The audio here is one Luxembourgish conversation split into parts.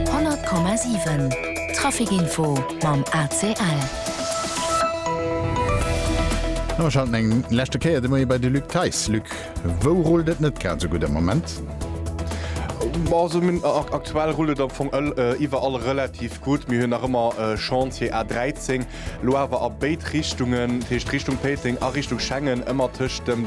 100,7 Traficinfo mam ACL. A mir schalten eng leschte Kéier de Moie bei de Luc Theis. Luc, wou rullt et net grad esou gutt am Moment? Aktuell rullt et am Fong iwwerall relativ gutt. Mir hunn nach ëmmer e Chantier A13, elo awer a béid Richtungen, dat heescht Richtung Péiteng a Richtung Schengen, ëmmer tëscht dem.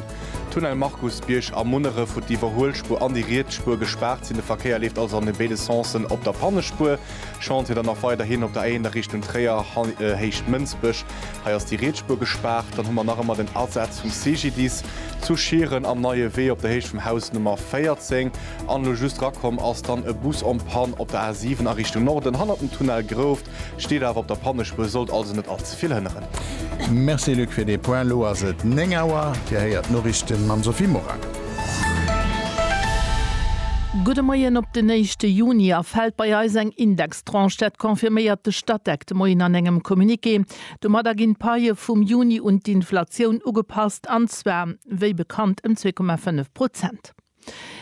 Tunnel Markusbierg a Munneref, wou d'Iwwerhuelspuer an déi riets Spuer gespaart sinn. De Verkéier leeft also an béide Sensen op der Pannespuer. Chantier dann nach weiderhin op der A1 a Richtung Tréier, Héicht Mënsbech. Hei ass déi riets Spuer gespaart. Dann hu mer nach ëmmer den Asaz vum CGDIS zu Schieren am Neie Wee, op der Héicht vum Haus Nummer 14. An elo just rakomm ass dann e Bus en panne op der A7 a Richtung Norden, hannert dem Tunnel Grouft. Steet awer op der Pannespur, sollt also net all ze vill hënneren. Merci Luc fir dee Point. Elo ass et 9 Auer. Dir héiert d'Noriichten mam Sophie Morang. Gudde Moien op den éischte Juni a fält bei eis eng Indextranche. Dat confirméiert de Statec de Moien an engem Communiqué. Domadder ginn d'Paie vum Juni un d'Inflatioun ugepasst, an zwar wéi bekannt ëm zwee Komma fënnef Prozent.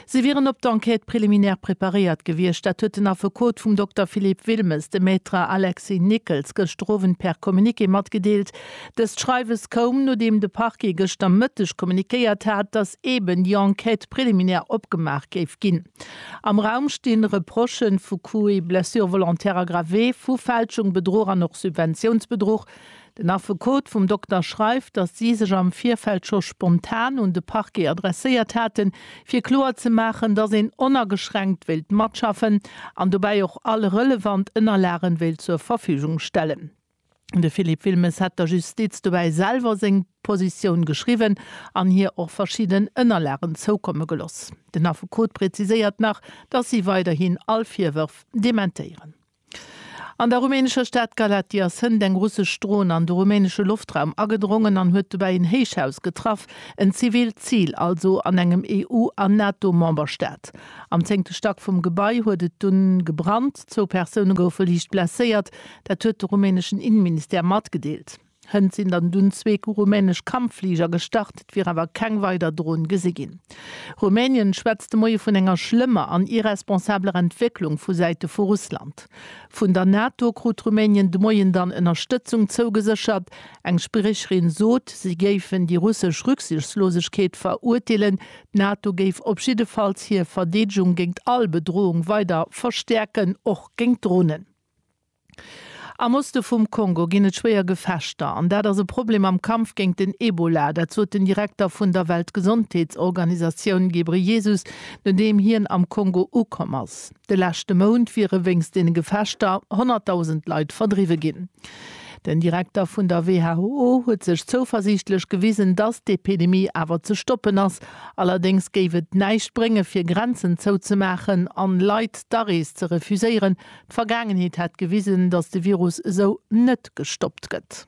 Si wieren op d'Enquête préliminaire preparéiert gewiescht. Dat huet den Affekot vum Dokter Philippe Wilmes, de Maître Alexis Nickels, gëschter Owend per Communiqué matgedeelt. Dëst Schreiwes koum, nodeem de Parquet gëschter Mëtteg kommuniquéiert hat, datt eeben déi Enquête préliminaire opgemaach géif ginn. Am Raum sti Reprochë vu Coup et blessure volontaire aggravé, vu Fälschung, Bedruch an och Subventiounsbedruch. Den Affekot vum Dokter schreift, datt si sech am Virfeld scho spontan un de Parquet adresséiert haten, fir kloer ze maachen, datt een onageschränkt wéilt matschaffen an dobäi och all relevant Ënnerlagen wéilt zur Verfügung stellen. De Philippe Wilmes hätt der Justiz dobäi selwer seng Positioun geschriwwen an hir och verschidden Ënnerlagen zoukomme geloss. Den Affekot präziséiert nach, datt si weiderhin all Virwërf dementéieren. An der rumänescher Stad Galatia sënnt eng russesch Dron an de rumänesche Loftraum agedrongen an huet dobäi en Héichhaus getraff, en zivilt Zil also an engem EU an NATO-Memberstaat. Am zéngte Stack vum Gebai huet et dunn gebrannt, zwou Persoune goufe liicht blesséiert, dat huet de rumäneschen Inneministère matgedeelt. Hënt sinn dann dunn zwee rumänesch Kampffliger gestart, et wier awer keng weider Dron gesi ginn. Rumänien schwätzt de Moie vun enger schlëmmer an irresponsabler Entwécklung vu Säite vu Russland. Vun der NATO krut Rumänien de Moien dann Ënnerstëtzung zougeséchert. Eng Spriecherin sot, si géifen déi russesch Rücksichtslosegkeet verurteelen. D'NATO géif op jiddefalls hir Verdeedegung géint all Bedroung weider verstäerken, och géint Dronen. Am Oste vum Kongo ginn et schwéier Gefechter an dat ass e Problem am Kampf géint den Ebola. Dat sot den Direkter vun der Weltgesondheetsorganisatioun Ghebreyesus, nodeem hien am Kongo ukomm ass. De leschte Mount wiere wéinst deene Gefechter 100.000 Leit verdriwwe ginn. Den Direkter vun der WHO huet sech zouversiichtlech gewisen, datt d'Epidemie awer ze stoppen ass. Allerdéngs géif et näischt bréngen, fir Grenzen zouzemaachen an Leit d'Arees ze refuséieren, D'Vergaangenheet hätt gewisen, datt de Virus esou net gestoppt gëtt.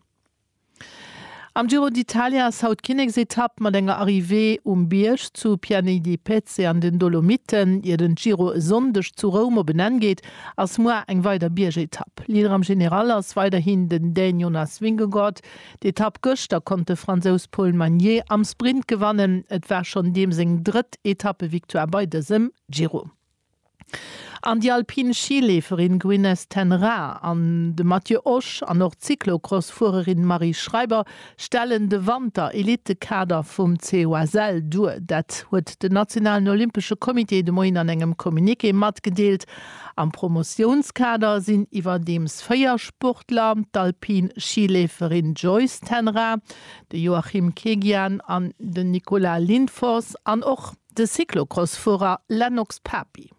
Am Giro d'Italia ass haut d'Kinneksetapp mat enger Arrivée um Bierg zu Piani di Pezze an den Dolomiten. Ier den Giro e Sonndeg zu Roum op en Enn geet, ass muar eng weider Biergetapp. Leader am General ass weiderhin den Dän Jonas Vingegaard. D'Etapp gëschter konnt de Fransous Paul Magnier am Sprint gewannen. Et war schonn deem seng drëtt Etappevictoire bei dësem Giro. An déi alpin Schileeferin Gwyneth ten Raa an de Matthieu Osch an och d'Cyclocross-Fuererin Marie Schreiber stellen de Wanter-Elitekader vum COSL duer. Dat huet den nationalen Olympesche Comité de Moien an engem Communiqué matgedeelt. Am Promotiounskader sinn iwwerdeems véier Sportler, d'alpin Schileeferin Joyce ten Raa, de Joachim Kegian an den Nicolas Lindfors an och. De Cyclocross-Fuerer Lennox Papi.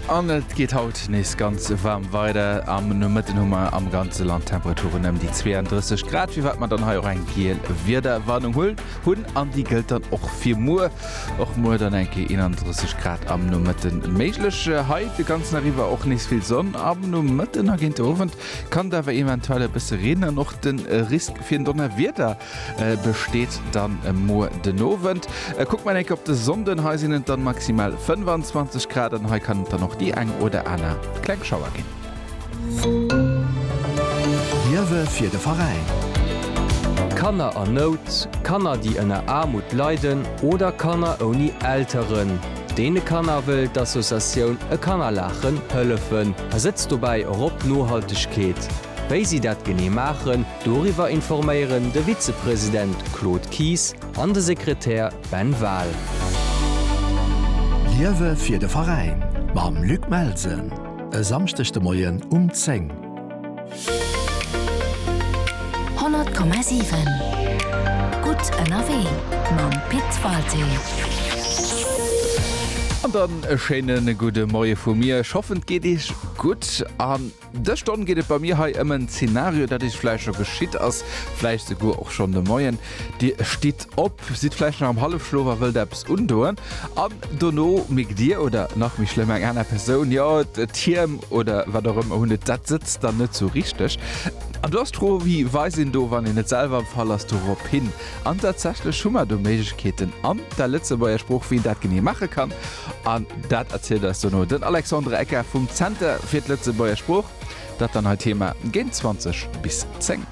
An et geet haut nees ganz waarm weider. Am Nomëtten hu mer am ganze Land Temperaturen ëm déi 32 Grad, firwat mer dann hei och eng giel Wiederwarnung hunn. An déi gëllt dann och fir muer. Och muer dann eng Kéier 31 Grad am Nomëtten méiglech. Hei de ganzen Dag iwwer och nees vill Sonn. Am Nomëtten a géint de Owend kann et awer eventuell e bësse reenen. Och de Risk Fir en Donnerwieder besteet dann muer den Owend. Kuckt mer enk op de Sonnden, hei sinn et dann maximal 25 Grad an hei kann et dann och déi eng oder aner kleng Schauer ginn. Hiewe fir de Veräin. Kanner a Nout, Kanner déi ënner Aarmut leiden oder Kanner ouni Elteren. Deene Kanner wëll d'Associatioun E Kannerlaachen hëllefen a setzt dobäi och op Nohaltegkeet. Wéi si dat genee maachen, doriwwer informéieren de Vizepresident Claude Kies an de Sekretär Ben Wahl. Liewe fir de Veräin mam Luc Melsen e Samschdeg de Moien um 10. 100,7 Gutt ënnerwee mam Pit Walté. An dann e schéine gudde Moie vu mir. Ech hoffen, et geet iech gutt. Dës Stonn geet et bei mir hei ëm en Zeenario, dat is vläicht scho geschitt ass, vläicht souguer och schonn de Moien. Dir stitt op, sidd vläicht nach am Hallefschlof a wëllt eppes undoen, an dono mierkt Dir, oder nach méi schlëmm eng aner Persoun, jo, d'Hiem oder wat och ëmmer, hunn et, dat sëtzt dann net sou richteg. An do ass d'Fro, Wéi weist een do, wann een net selwer am Fall ass, dorop hin? An tatsächlech hu mer do Méiglechkeeten an der Lëtzebuerger Sprooch, wéi een dat genee maache kann. An dat erzielt eis dono den Alexandre Ecker vum Zenter fir d'Lëtzebuerger Sprooch. Dat dann hei d'Thema géint 20 bis 10.